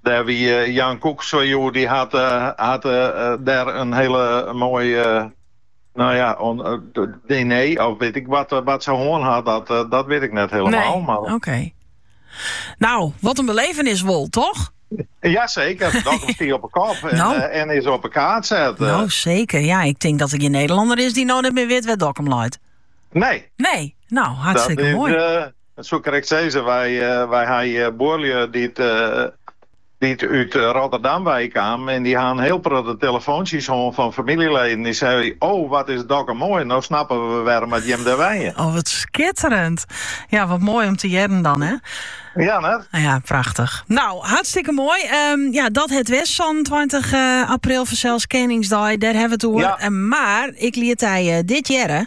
Dêr wie Jan Koek sa oer, dy hat dêr in hiele moaie no ja, oan diner of wit ik wat, wat se hân hat, dat, dat wit ik net helemaal. Nee, oké. Okay. No, wat in belevenis wol, toch? Ja, seker. Dat is die op een kop en, nou. eh, en, is op 'e kaart set. Eh. No, seker. Ja, ik tink dat der gjin Nederlanner is dy't no net mear wit wêr't Dokkum leit. Nee. Nee, no, hartstikke mooi. Eh, Dat soe ik krekt sizze. Wy ha hjir buorlju dy't út Rotterdam wei kamen en dy ha in hiel protte telefoantsjes hân fan famyljeleden dy't seie, O, wat is Dokkum moai, no snappe we wêrom dat jim dêr wenje. O, wat skitterend. Ja, wat moai om te hearren dan, hè? Ja, net? Ja, prachtich. No, hartstikke moai. Ehm, ja, dat het west sânentweintich eh, april, fansels Keningsdei, dêr ha we it oer. Ja. Eh, mar, ik liet hy eh, dit jierren.